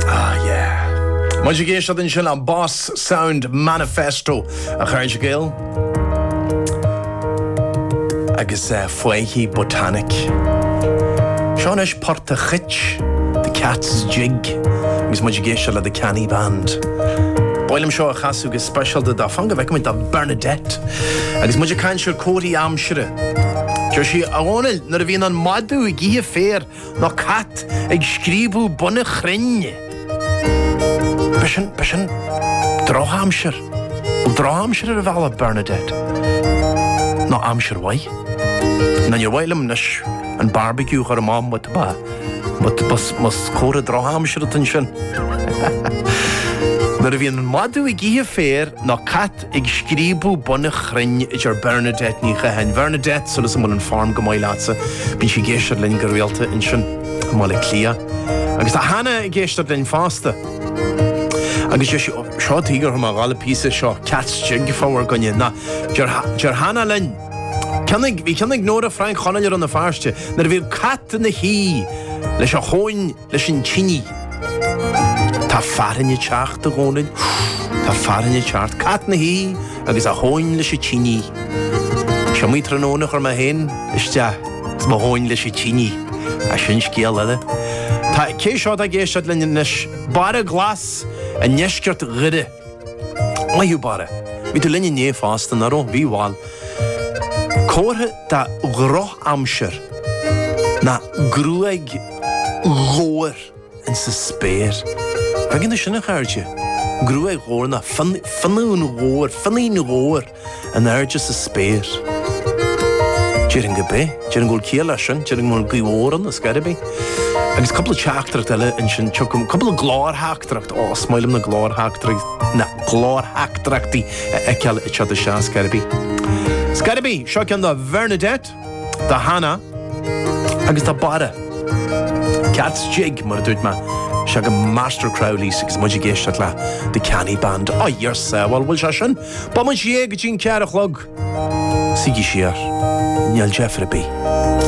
Ah yeah. Muid ag éisteacht ansin le Boss Sound Manifesto a chairde Gael agus eh, Faiche Botanic. Seo anois Port an Chait, The Cat's Jig, agus muid ag éisteacht le The Canny Band. Ba mhaith liom seo a chasadh go speisialta do, fan go bhfeicimid do Bernadette agus muid ag caint ar comharthaí aimsire. Deir sí, a Dhónaill, nuair a bhíonn an madadh ag ithe féir, ná cat ag scríobadh bun an chrainn. B'shin, b'shin drochaimsir, bhuel, drochaimsir ar an bhealach, Bernadette, ná aimsir mhaith. Ná níor mhaith liom anois an barbecue a chur amach but ba, but ba, más comhartha drochaimsir atá ansin. Nuair a bhíonn an madadh ag ithe féir ná cat ag scríobadh bun an chrainn, a deir Bernadette Ní Chatháin, Bernadette, súil is go bhfuil an form go maith leatsa, bíonn sí ag éisteacht linn go rialta ansin i mBaile Átha Cliath. Agus tá Hannah ag éisteacht linn fosta. Agus deir sí, 'Ó, seo taobh thiar thar Ghaillimh píosa seo, Cat's Jig, fabhar againne. Ná, deir, deir Hannah linn, 'Ceann ag, bhí ceann ag Nóra Frainc Chonaill i Rann na Feirste, nuair a bhíodh cat ina shuí leis a thóin, leis an tinidh. Tá fearthainn ag teacht, a Dhomhnaill, tá fearthainn ag teacht. Cat ina shuí agus a thóin leis an tinidh. S'iomaí tráthnóna a chuir mé féin isteach is mo thóin leis an tinidh, ach sin scéal eile. Tá, cé seo atá ag éisteacht linn anois? Barra Glas i ndeisceart Dhoire. Maith thú, Barra. Bhí tú linn inné fosta, nach raibh? Bhí, bhuel. Comhartha de dhrochaimsir ná gruaig ghabhair insa spéir. Tuigeann tú sin, a chairde. Gruaig ghabhair ná fionn, fionnadh an ghabhair, fionnadh an ghabhair. in airde sa spéir. Déarfainn go bith. Déarfainn go bhfuil ciall leis sin. Déarfainn go bhfuil gaoth mhór ann, ar scor ar bith. Agus cúpla teachtaireacht eile ansin tchím, cúpla glórtheachtaireacht, ó, is maith liom na glórtheachtaireacht, na glórtheachtaireachtaí a fheiceáil ag teacht isteach, ar scor ar bith. Ar scor ar bith. Seo ceann do Bhernadette, do Hannah agus do Barra. Cat's Jig, mar a dúirt mé. Seo chugaibh Master Crowley's agus muid ag éisteacht le The Canny Band. Á, Iorsá, bhuel, bhuel, seo sin. Beidh muid anseo go dtí an ceathair a chlog. Suígí siar. Níl deifir ar bith.